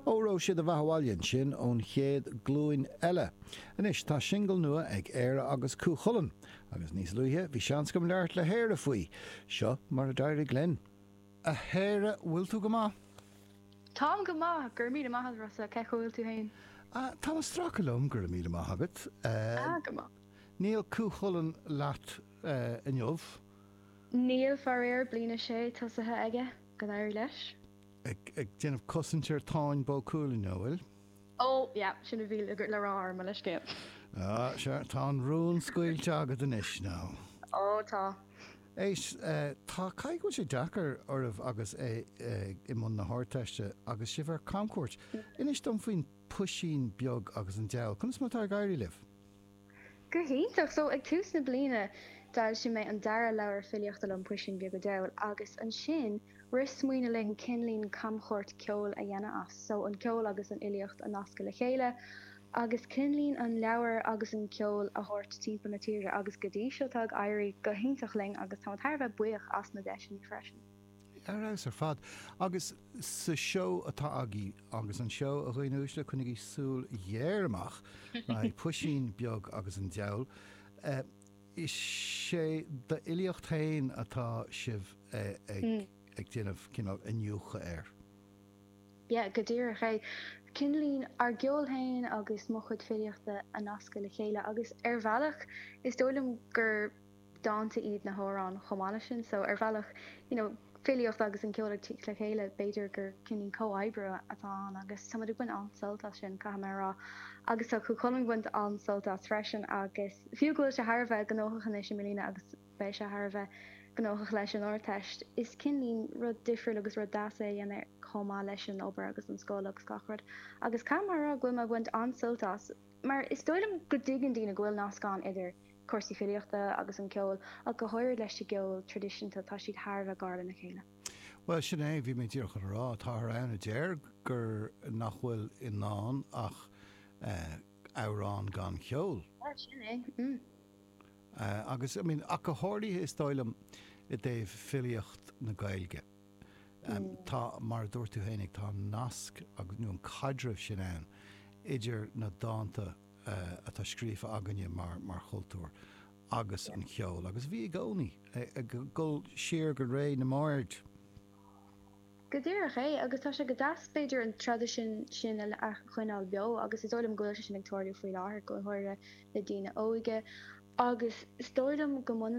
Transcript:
Óró Sé do Bheatha Abhaile ansin ón Chéad Ghlúin Eile. Anois tá singil nua ag Éire agus Cú Chulainn, agus níos luaithe bhí seans agam labhairt le hÉire faoi. Seo mar a d'éirigh linn. A Éire, bhfuil tú go maith? Táim go maith, go raibh míle maith agat, Rossa, cén chaoi a bhfuil tú féin? Ah, táim ag stracadh liom, go raibh míle maith agat. Ah, go maith. Níl Cú Chulainn leat inniu? Níl, faraor, bliain a sé tosaithe aige, go n-éirí leis. ag déanamh cosaint ar Táin Bó Cuailgne, an bhfuil? Ó, yeah, sin a bhí le rá orm, mo leithscéal. Ó, sea, tá an rún scaoilte agat anois, now. Ó, tá. Éist, tá, caithfidh go bhfuil sé deacair oraibh agus é i mbun na hArdteiste agus sibh ar camchuairt. Inis dom faoin Puisín Beag agus an Deabhal. Conas mar atá ag éirí libh? Go hiontach! So, ag tús na bliana d'fhoilsigh mé an dara leabhar filíochta liom, Puisín Beag a' Diabhail, agus ansin rith smaoineamh linn cineáilín camchuairt ceoil a dhéanamh as, so, an ceol agus an fhilíocht a nascadh le chéile, agus cineáilín an leabhar agus an ceol a thabhairt timpeall na tíre, agus go dtí seo tá ag éirí go hiontach linn agus táim thar a bheith buíoch as na deiseanna freisin. Ar fheabhas ar fad. Agus sa seó atá agaibh, agus an seó, a dhaoine uaisle, coinnigí súil ghéar amach le haghaidh Puisín Beag agus an Deabhal. Is é d'fhilíocht féin atá sibh ag déanamh cineál iniúchadh air. Yeah, go díreach é. Cineáilín ár gceol féin agus mo chuid filíochta a nascadh le chéile agus ar bhealach is dóigh liom gur dánta iad na hamhráin chomh maith leis sin. So ar bhealach, you know, filíocht agus an ceol ag tíocht le chéile, b'fhéidir gur cineáilín comhoibriú atá ann agus tá muid ag baint an-sult as sin, caithfidh mé a rá. Agus tá Cú Chulainn ag baint an-sult as freisin agus fiú go bhfuil sé thar a bheith gnóthach anois i mbliana agus beidh sé thar a bheith gnóthach leis an Ardteist, is cineáilín rud difriúil agus rud deas é a dhéanamh chomh maith leis an obair agus an scoil agus gach rud. Agus caithfidh mé a rá go bhfuil mé ag baint an-sult as. mar is dóigh liom go dtuigeann daoine go bhfuil nasc ann idir cúrsaí filíochta agus an ceol, ach go háirid leis an gceol traidisiúnta, tá siad thar a bheith gar lena chéile. Bhuel, sin é, bhí mé díreach chun a rá, táthar ann a deir gur, nach bhfuil i ndán ach amhrán gan cheol. Bhuel, sin é, mm. Agus, I mean, ach go háirithe, is dóigh liom, i dtaobh filíocht na Gaeilge. Tá, mar a dúirt tú féinig, tá an nasc agus, nó an caidreamh sin ann idir na dánta atá scríofa againne mar, mar chultúr agus an cheol. Agus bhí i gcónaí ag dul siar go ré na mbard. Go díreach é, agus tá sé go deas, b'fhéidir, an traidisiún sin a choinneáil beo, agus is dóigh liom go bhfuil sé sin ag tarlú faoi láthair, go háirithe le daoine óige, agus is dóigh liom go mbaineann.